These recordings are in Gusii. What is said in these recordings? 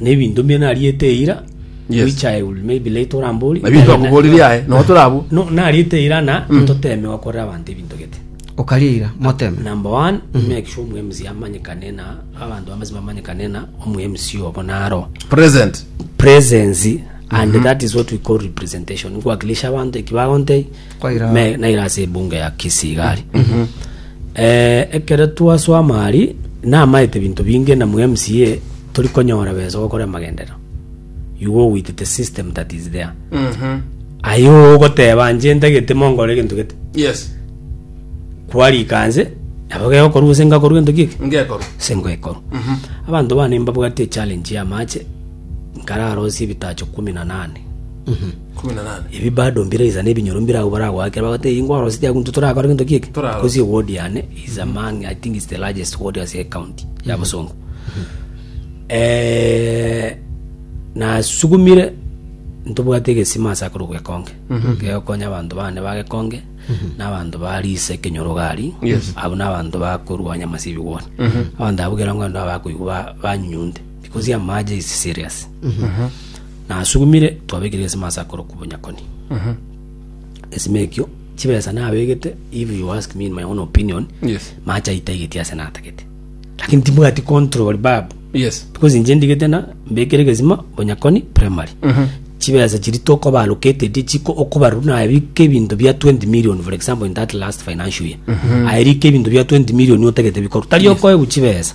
Nebinto mbia nariete eira Yes. which I will maybe later orambori. Nabio twakoborire aye, nabo tore abwo. No, nariete eira na toteme gokorera abanto ebinto gete. okaria eira moteme Number one, make sure omu MC amanyekane na abanto bamasi bamanyekane na omu MC obo naro Present. presence and that is what we call representation nkuwakilisha abanto eki bagontei me- naire ase ebunga ya Kisii iga aria. Eh, ekero twaswama aria, namaete binto binge na mcA tori konyora besa gokora amagenderero. You go with the system that is there. Aye ogoteba inche ntagete mongore egento gete. Yes. Kwarika nse, nabo gegokorwa gose ngakorwa egento giki? Ngekorwa. Gose ngekorwa. Abanto bane mbabwate echallenge ya amache, nkararosie ebitacho kumi na nane. Ebi bado mbiraisa nebinyoro mbire agwo baragoakera, bagoteba, Eyi ngwaro city agwo intwe torakore gento giki? Because a ward yane is among, I think it's the largest ward ase ecounty ya Bosongo. Eh, nasugumire ntobwate egesima ase akorokwa Gekonge, gegokonya abanto bane ba Gekonge, na abanto ba Risa ekenyoro gari, Yes. abo na abanto bakorwa nyama ase ebigwoni. Abanto abwo kera ngondo abakoigwa ba- banyunyunte, because amache is serious. Nasugumire, twabekire egesima ase akoro k'obonyakoni. Egesima ekio, chibesa nabegete, if you ask me in my own opinion, Yes. mache aitaigeti ase natagete. Lakini tibwati control babu. Yes. Because inche ndigete na mbekere egesima bonyakoni primary. Chibesa chiri tokoba allocated chiko okobarwa naye bike ebinto bia 20 million for example in that last financial year. Aye rika ebinto bia 20 million otagete bikorwa. Tari okoegwa chibesa.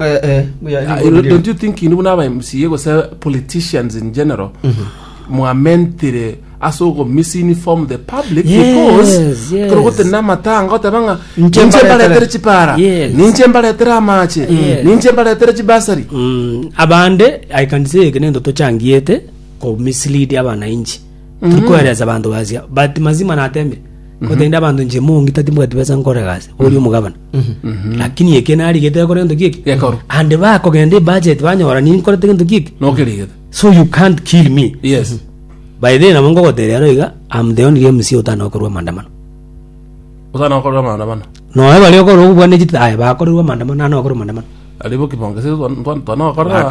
Eh, eh, buya, Ah, rigo, you- rigo. don't you think inu buna aba mca gose politicians in general mwamentire ase ogomisinform the public Yes, because yes. kero gote namatanga oteba ng'a Ninche ninche mbaretere. mbaretere chipara Yes. ninche mbaretere amache Yes. ninche mbaretere chibasari Mm, abande i can say eke nento tochangiete ko mislead abananchi turi koeresa abanto basia but mazima natemire kotende abanto nche mongi tati mbwati besa nkore gasi ori omogabana Lakini eke narigete gokora gento giki. Gekorwa. And bakogenda ebudget banyora ninkorete gento giki. Nokerigete. So you can't kill me. Yes. By the way nabo ngogoteria aro iga I'm the only MC otana gokorwa maandamano. Otana gokorwa maandamano. Noe baria okorwa okobwana echitaya bakorerwa maandamano nano nakorwa maandamano. Aribo kibonge se twana twana gokorera.